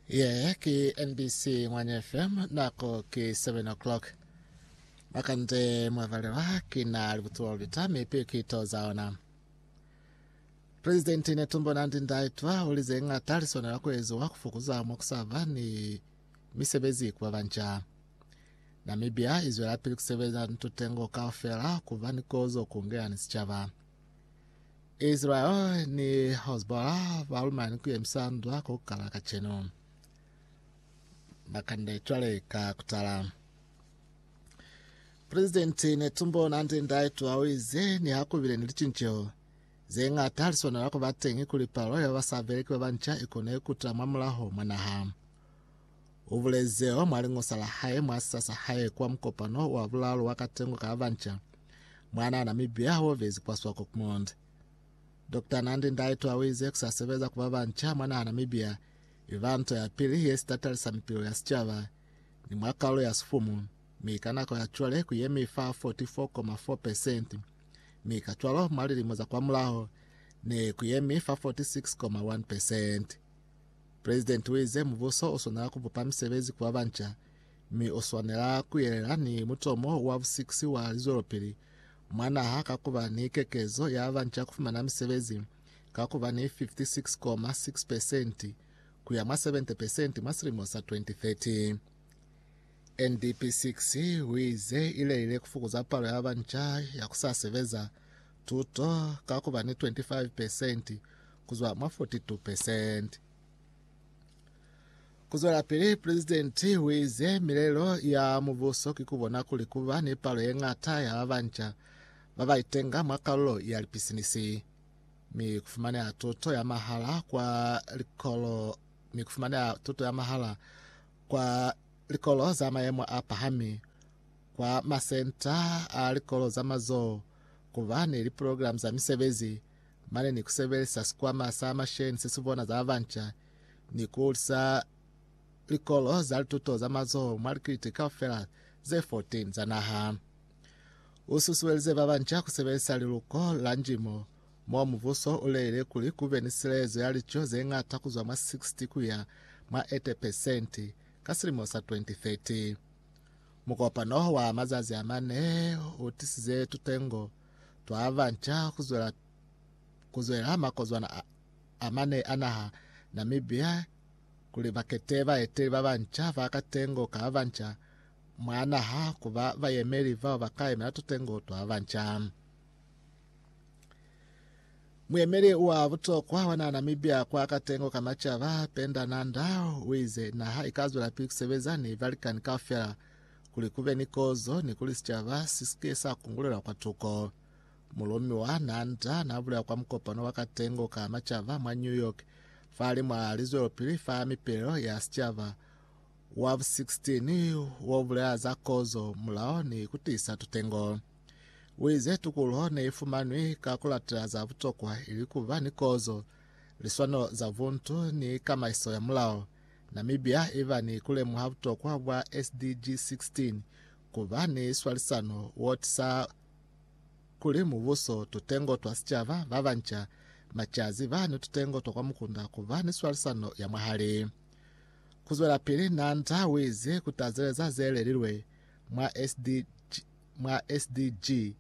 Ye ki NBC Ngwanya FM, nako ki 7 o'clock. Makande mwavalelwa ki na libutulo lita mi piu ki to za ona. Presidenti Netumbo Nandi-Ndaitwah uli ze ng'ata li swanela ku eziwa ku fukuza mwa ku sa ba ni misebezi ku ba banca. Namibia i zwelapili ku sebeza ni tutengo kaufela ku ba ni kozo ku ngeyani sicaba. Israel ni Hezbollah ba lumani ku yemisa ndwa ku kala kacenu. Bakande cwale ka kutala. President Netumbo Nandi Ndaitwa o ize ni hakubile ni licinceho ze ngata li swanela ku ba teñi kuli palo ya basabeleki ba banca i kone ku tila mwa mulaho mwa naha. U bulezeo mwa liñosa la hae mwa sisa sa hae kwa mukopano wa bulalo wa katengo ka banca mwana Namibia ho vezi kwa Swakopmund. Dr. Nandi Ndaitwa o ize kusa sebeza kuba banca mwa naha Namibia iba nto ya pili ye sitatalisa mipilo ya sicaba ni mwa kalulo ya sifumu, mi ka nako ya cwale ku yemi fa 44,4 pesenti, mi ka cwalo mwa lilimo za kwa mulaho ne ku yemi fa 46,1 pesenti. Presidenti uize mubuso uswanela kubupa misebezi ku babanca, mi uswanela kuyelela ni mutomo wa busikisi wa lizwelopili mwa naha ka kuba ni kekezo ya babanca kufumana misebezi ka kuba ni 56.6 pesenti kuya mwa 70 pesenti mwa silimo sa 2030. NDP 6 uize ilelile kufukuza palo ya babanca ya kusasebeza tuto ka kuba ni 25 pesenti ku zwa mwa 42 percent. Ku zwelapili, Pulezidenti u ize milelo ya mubuso ki ku bona kuli ku ba ni palo ye ñata ya ba banca ba ba itenga mwa kalulo ya lipisinisi, mi ku fumaneha tuto ya mahala kwa likolo mi ku fumaneha tuto ya mahala kwa likolo za mayemo a pahami, kwa masenta a likolo za mazoho, ku ba ni liprogramu za misebezi, mane ni ku sebelisa sikwama sa masheni se si bona za ba banca ni ku hulisa likolo za lituto za mazoho mwa likiliti kaufela ze 14 za naha. U susuelize ba banca ku sebelisa liluko la njimo, mo mubuso u leile kuli ku be ni silezo ya lico ze ñata ku zwa mwa 60 ku ya mwa 80 pesenti ka silimo sa 2030. Mukopano wa mazazi a mane u tisize tutengo twabanca kuzwela kuzwela ha makozwana a, a mane a naha Namibia kuli bakete baeteli babanca ba katengo kabanca mwa naha kuba bayemeli bao bakayemela tutengo twabanca. Muyemeli wa butokwa wa naha Namibia kwa katengo ka macaba Penda Nanda uize naha ikazwela pili kusebeza ni balikani kaufela kuli ku be ni kozo ni kuli sicaba si si ke sa kungulelwa kwa tuko. Mulumi wa Nanda n'a bulela kwa mukopano wa katengo ka macaba mwa New York fahali mwa lizwelopili fa mipelelo ya sicaba wa bu 16 wo bulela za kozo, mulao, ni ku tiisa tutengo. U ize, Tukuluho ne i fumanwi ka ku latela za butokwa, ili ku ba ni kozo, liswanelo za buntu, ni kamaiso ya mulao. Namibia i ba ni ku lemuha butokwa bwa SDG 16, ku ba ni swalisano wo tisa kuli mubuso, tutengo twa sicaba, ba banca, macazi, ba ni tutengo twa kwa mukunda ku ba ni swalisano ya mwahali. Ku zwelapili, Nanda u ize ku tazeleza ze lelilwe mwa SDG, mwa SDG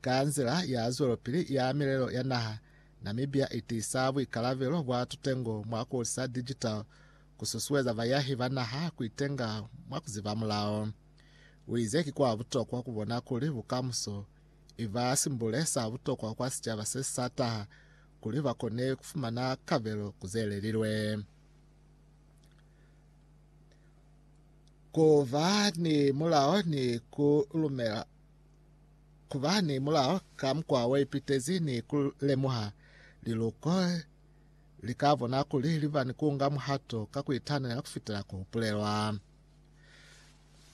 ka nzila ya zwelopili ya milelo ya naha Namibia i tiisa buikalabelo bwa tutengo mwa ku hulisa digital, ku susueza bayahi ba naha ku itenga mwa ku ziba mulao. U ize ki kwa butokwa ku bona kuli bukamuso i ba simbule sa butokwa kwa sicaba se sa taha kuli ba kone ku fumana kabelo ku ze lelilwe. Ku ba ni mulao ni ku lumela ku ba ni mulao ka mukwa wa ipitezi ni ku lemuha liluko li ka bona kuli li ba ni ku nga muhato ka ku itanela ku fitela ku hupulelwa.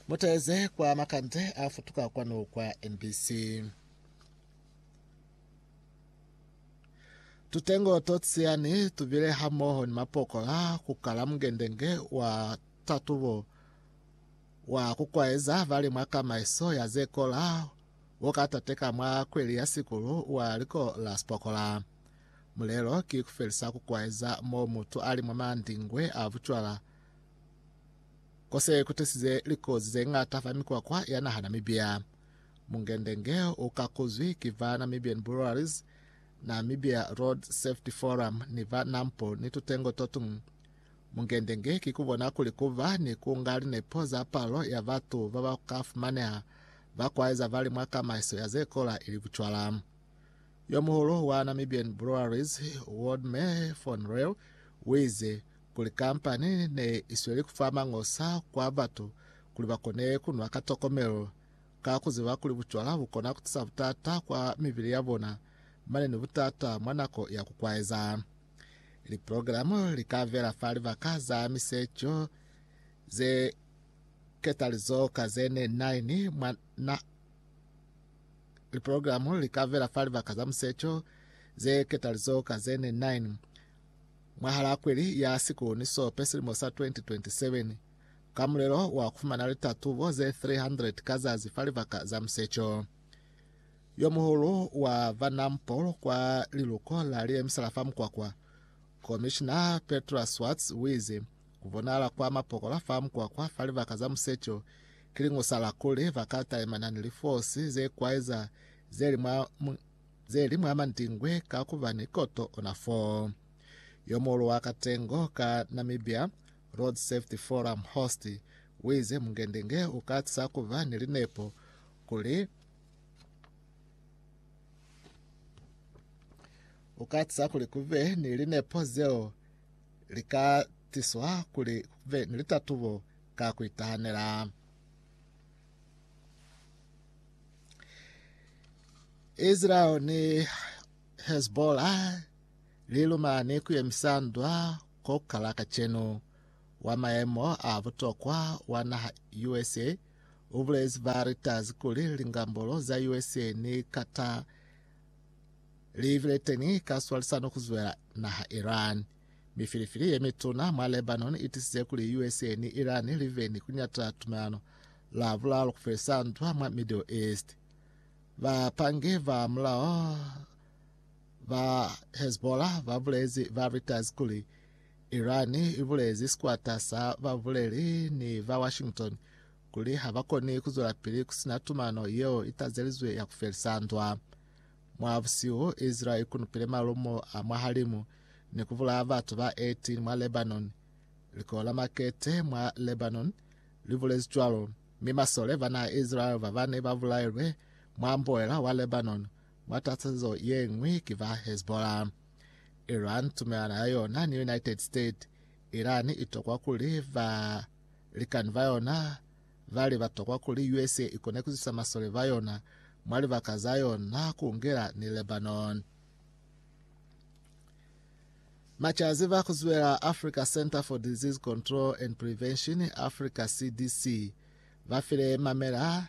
Mu teeze kwa makande a futuka kwanu kwa NBC. Tutengo to tsiyani tu bile hamoho ni mapokola ku kala mungendenge wa tatubo wa ku kwaeza bali mwa kamaiso ya ze kola wo ka tateka mwa kweli ya sikulu wa liko la Spokola. Mulelo ki ku felisa ku kwaeza mo mutu ali mwa mandingwe a bucwala ko se ku tisize likozi ze ñata fa mikwakwa ya naha Namibia. Mungendenge u kakuzwi ki ba Namibian Breweries, Namibia Road Safety Forum ni ba NAMPO ni tutengo to tuñwi. Mungendenge ki ku bona kuli ku ba ni ku nga linepo za palo ya batu ba ba ka fumaneha ba kwaeza bali mwa kamaiso ya ze kola ili bucwala. Yo muhulu wa Namibian Breweries, Waldemar von Reel, u ize kuli kampani ne i sweli ku fa mañosa kwa batu kuli ba kone ku nwa ka tokomelo, ka ku ziba kuli bucwala bu kona ku tisa butata kwa mibili ya bona mane ni butata mwa nako ya ku kwaeza. Liprogramo li ka vela fa libaka za miseco ze ketalizo ka ze ne nine mwa na liprogramo li ka vela fa libaka za museco ze ketalizo ka ze ne nine mwahala kweli ya sikuni sope silimo sa 2027 ka mulelo wa kufumana litatubo ze 300 ka zazi fa libaka za museco Yo muhulu wa ba Nampol kwa liluko la Liyemisela fa Mukwakwa, Komishina Petra Swartz wize, Ku bonahala kwa mapokola fa mukwakwa fa libaka za musecho ki lingusa la kuli ba ka talimana ni lifosi ze kwaeza ze li mwa ze li mwa mandingwe ka ku ba ni koto ona fo. Yo muhulu wa katengo ka Namibia, Road Safety Forum Host, wize mungendenge u ka tisa ku ba ni linepo kuli U ka tisa kuli ku be ni linepo zeo li ka tiswa kuli ku be ni litatubo ka ku itahanela. Israel ni Hezbollah li lumani ku yemisa ndwa ko kala kacenu. Wa maemo a butokwa wa naha USA U bulezi ba Reuters kuli, Lingambolo za USA ni Qatar li bile teñi ka swalisano ku zwela naha Iran. Mifilifili ye mituna mwa Lebanon i tisize kuli USA ni Iran li be ni ku nyata tumelano lwa bulalo ku felisa ndwa mwa Middle East. Bapangi ba mulao ba Hezbollah ba bulezi ba Reuters kuli, Iran i bulezi sikwata sa babuleli ni ba Washington kuli ha ba koni ku zwelapili ku sina tumano yeo i tazelizwe ya ku felisa ndwa. Mwa busihu, Israel i kunupile malumo a mwahalimu ni ku bulaya batu ba 18 mwa Lebanon. Likolo la makete mwa Lebanon li bulezi cwalo, mi masole ba naha ya Israel ba bane ba bulailwe mwa mboela wa Lebanon mwa tatazezo ye ñwi ki ba Hezbollah. Iran, tumelano ya yona ni United States, Iran itokwa kuli ba likani ba yona bali batokwa kuli usa ikone kuzisa masole ba yona mwa libaka za yona kungela ni Lebanon. Machazi ba kuzwela Africa Center for Disease Control and Prevention, Africa CDC, ba file mamela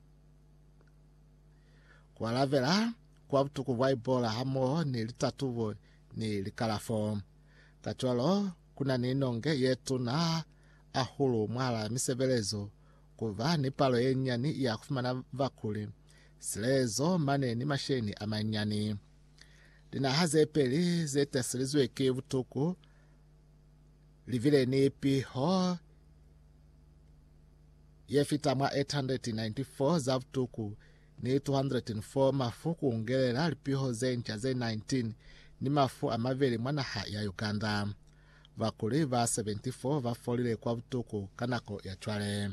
Ku alabela kwa butuku bwa Ebola hamoho ni litatubo ni likalafo. Kacwalo, ku na ni nonge ye tuna hahulu mwahalaa misebelezo, ku ba ni palo ye nyani ya ku fumana bakuli, silelezo mane ni masheleñi a manyani. Linaha ze peli ze taselizwe ki butuku Livile ni piho ye fita mwa 894 za butuku ni 204 mafu ku ungelela lipiho ze nca ze 19 ni mafu a mabeli mwa naha ya Uganda. Bakuli ba 74 ba folile kwa butuku ka nako ya cwale.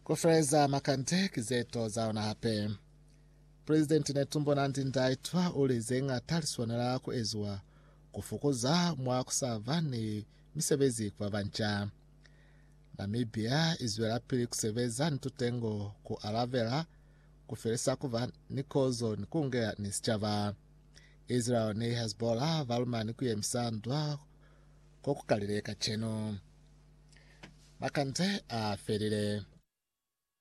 Ku feleza makande ki ze to za lona hape. President Netumbo Nandi-Ndaitwah uli zeñata liswanela kueziwa kufokoza mwa kusaba ni misebezi kuba banca. Namibia izwelapili kusebeza ni tutengo ku alabela, kufelisa kuba ni kozo ni kuungela ni sicaba. Israel ni Hezbollah balumani kuyemisa ndwa kokukalile kacenu. Makande afelile.